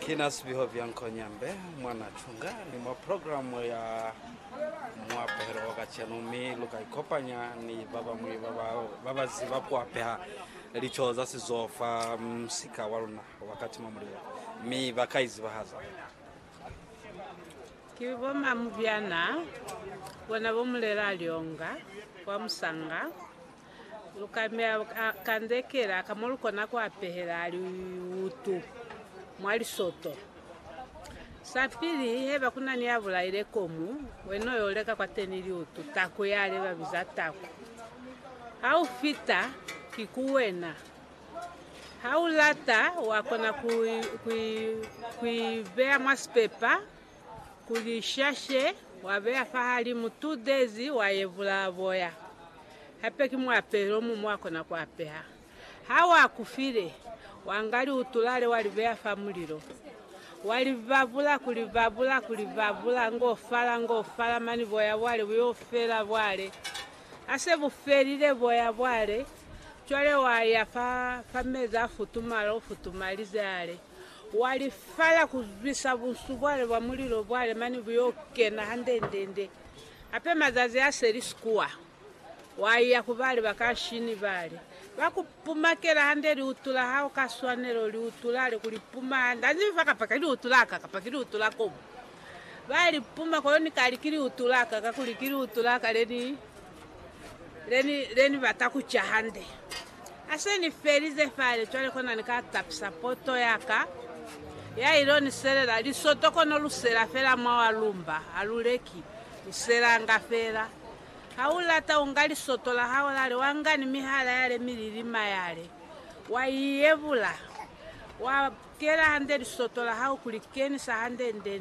Kina Sibiho Bianco Nyambe, mwa Natunga, ni mwa programe ya Muapehelo wa kacenu, mi luka ikopanya ni babañwi babaziba kuapeha lico za sizo fa musika waluna wa Katima Mulilo, mi baka izibahaza. Ki bo Mamubyana, bona bo Mulela Lyonga, kwa Musanga, Lu ka meya kandekela ka mo lu kona ku apehela liutu mwa lisoto. Sa pili, haiba ku na ni ya bulaile komu, wena u yo leka kwateni liutu, taku yale ba biza taku. Ha u fita, ki ku wena. Ha u lata, wa kona ku i beya mwa sipepa Ku lishashe, wa beya fahalimu two days, wa yevula boya. Hape ki muapelo omuñwi wa kona ku apeha. Ha wa ku file, wa nga liutulale wa li beya fa mulilo. Wa li babula, ku li babula, ku li babula, ngo fala, ngo fala, mane boya bwale bu yo fela bwale. Ha se bu felile boya bwale, cwale wa ya fa, fa mezi a futumala, u futumalize ale. Wa li fala ku zwisa bunsu bwale bwa mulilo bwale mane bu yo kena handendende. Hape mazazi a seli sikuwa, wa iya ku bali ba kanshini bale ba ku pumakela hande liutu la hao ka swanelo, liutu lale ku li puma hande. Ha nzi fa kapa ki liutu la ka, kapa ki liutu la kobo. Ba li puma kono ni ka li ki liutu la ka, kakuli ki liutu la ka le ni Le ni, le ni bata ku ca hande. Ha se ni felize fale, cwale kona ni ka tapisa poto ya ka, ya il'o ni selela lisoto kono lu sela fela mwa wa lumba, ha lu leki, lu selanga fela. Ha u lata, u nga lisoto la hao lale, wa nga ni mihala yale mililima yale, wa i yebula, wa kela hande lisoto la hao ku li kenisa hande nde ni